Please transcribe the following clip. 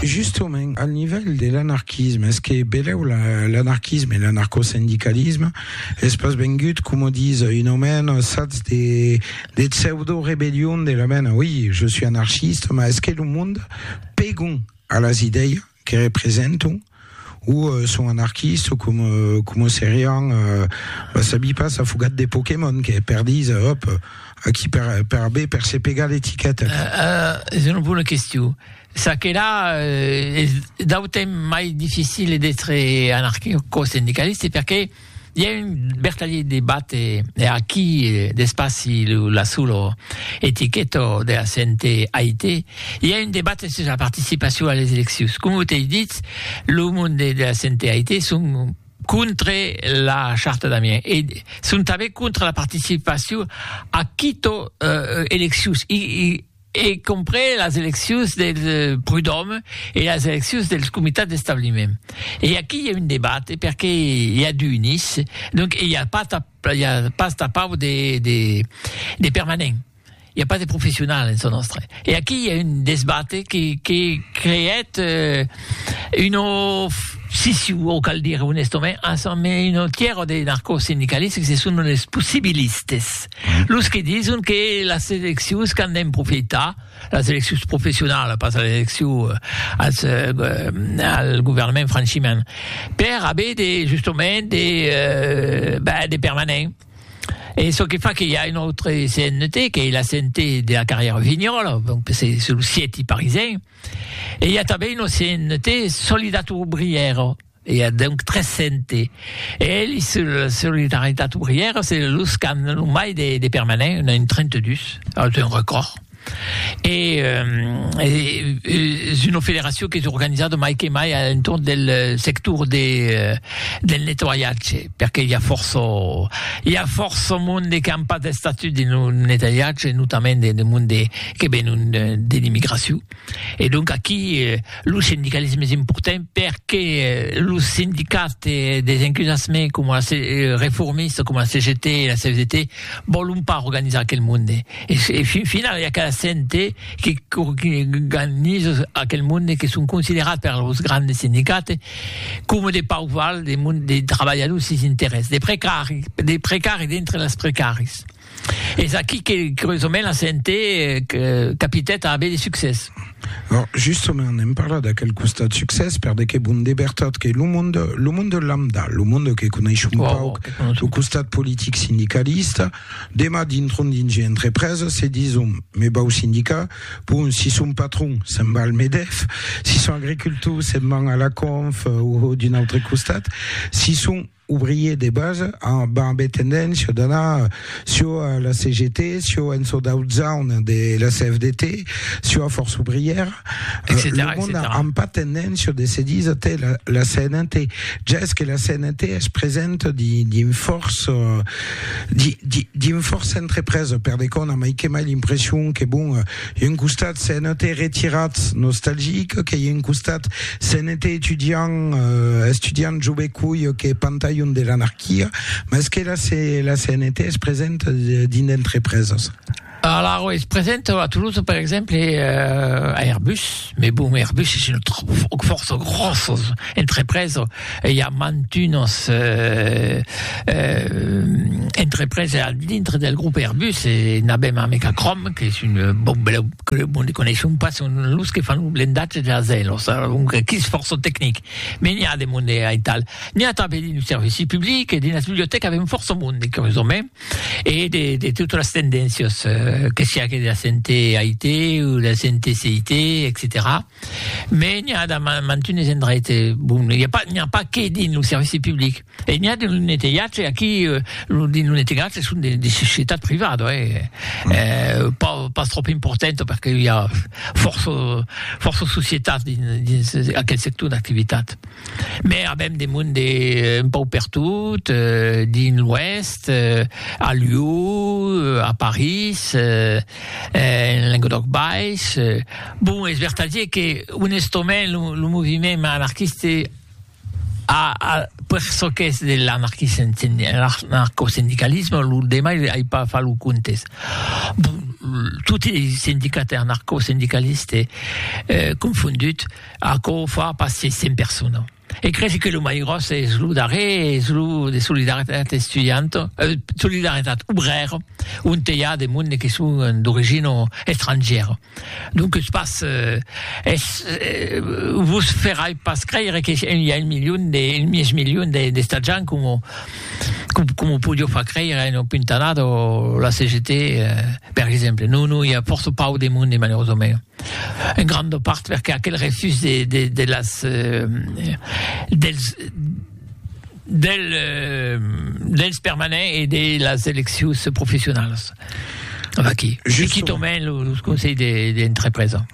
Justement, al nivèl de l'anarquisme, es que belèu l'anarquisme e l'anarcosindicalisme es pas vengut, coma ditz un omèn, sats de pseudo-rebellion de la mena, oi, je suis anarchiste, mas es que lo monde pègon a las idèias que representam o son anarquistes o com, com o serián, va sabi pas, afogat de Pokémon que perdís, òp, aquí per, per aver per se pegar l'etiqueta. Uh, uh, es una bona question. Ça que là, uh, es d'autem mai difficile d'être anarquico-sindicaliste perché I a un vertadier debat e aquí d'espaci la solo etiqueta de la CNT AIT. I a un debat sus la participacion a les eleccions. Com ho t'ei dit, lo mond de la CNT AIT son contra la charta d'Amiens e son tanben contra la participacion a quito eleccions. I, i, e comprés las eleccions del Prud'Òme e las eleccions dels comitats d'establiment. E aquí i a un debate perque i a du unis, donc i a pas i a pas tapau de de de permanent, i a pas de professional en çò nòstre. E aquí i a un desbate que que creèt un of siciu o cal dire onestament, un tièr de narcosindicalistes que se son los possibilistes. Los que dison que las eleccions qu'an d'en profitar, las eleccions professionalas, pas las eleccions euh, als, euh, euh, al governament franchiment, per haver de, justament de, euh, ben, de permanents. Et ce qui fait qu'il y a une autre CNT, qui est la CNT de la carrière Vignol, donc c'est sur le site parisien. Et il y a aussi une CNT Solidato Ouvrière, I a donc 300 e elis se la solidaritat obrièra se los qu'an lo mai de, de permanent, un a un 32, es un record. E es una federacion qu'es organizada mai que mai a l'entorn del sector de, del nettoiatge, perque i a fòrça, i a fòrça monde qu'an pas d'estatut dins lo nettoiatge, notament de monde que venon de l'immigracion. E donc aquí lo sindicalisme es important perque los sindicats des encusassement coma la reformista, coma la CGT e la CFDT vòlon pas organizar aquel monde. E fin finau i a cada cente que organiza aquel monde que son considerats per los grandes sindicats coma de pauc val de trabalhadors sens interès, de precaris, de precaris dintre dels precaris. Es aquí que, curiosament, la CNT capitèt a aver de succès. Justament, n'èm parlat d'aquel costat succès, per de que bon de vertat que lo monde, lo monde lambda, lo monde que coneis un pauc lo costat politic sindicalista, demà dintron dins una entrepresa se dison, me vau sindicar, bon, si son patron, se'n va al Medef, si son agricultor, se'n van a la Conf o d'un autre costat, si son ouvrier de base amb ambé tendéncia d'anar sio a la CGT, sio en çò d'aut zaun de la CFDT, sio a Força Ouvrièra, lo mond a amb pas tendéncia de se disa te la CNT, ja es que la CNT es presenta dins fòrça dins fòrça entrepresa per de qu'òna mai que mai l'impression que bon, I un costat se'n ète retirat nostalgic, que i un costat se'n ète estudiant, estudiant jo be coi que pantalhon de l'anarquia, mas que la, la CNT es present dins d'entrepreses. Alors, es present a Toulouse, per exemple, a Airbus, mais bon, Airbus es une autre, fòrça gròsses entrepreses, E i a mantunas entreprese al dintre del grop Airbus e n'avèm a Mecacrom, qu'es un bon belèu club ont coneishon pas son los que fan lo blendatge de las aèlos, alonque que's fòrça tecnic. Me n'i a de monde aital. N'i a tanben dins lo servici public e dins las bibliotècas avèm fòrça monde, curiosament, e de de totas las tendéncias, que siá que de la CNT, AIT, o de la CNT, CIT, etcetèra. Mais n'i a damb mantunes endraite, bon, n'i a pas, n'i a pas que dins lo servici public, e n'i a dins lo netelhatge, aquí, lo, dins lo netelhatge son de, de societat privada, hè, eh, pas, pas tròp importanta, perque i a fòrça, fòrça societats dins, dins aquel sector d'activitat. Mais avèm de monde un pauc pertot, dins l'Oèst, a Lió, a París, en Languedoc Baish. Bon, es vertadier que, onestament, lo, lo moviment anarquiste a, a, per çò qu'es de l'anarquisme, anarcosindicalisme, lo demai ai pas fach lo comptes. Bon, toti es sindicats anarcosindicalistes eh, confonduts, aquò fa pas 600 personas. E cresi que lo mai gròs es lo darrer, es lo de Solidaritat Estudianta, eh, Solidaritat Obrèra, onte i a de monde que son d'origina estrangièra. Donques pas, eh, es, eh, vos ferai pas creire que i a un milion de, un mièg milion de, d'estatjants coma, coma podiá far creire una puntanada la CGT, eh, per exemple. Non, non, i a fòrça pauc de monde, malerosament. En granda part perque aquel refús de de de las dels del dels permanents e de las eleccions professionalas. Aquí, quitament los conselhs de d'entrepresa.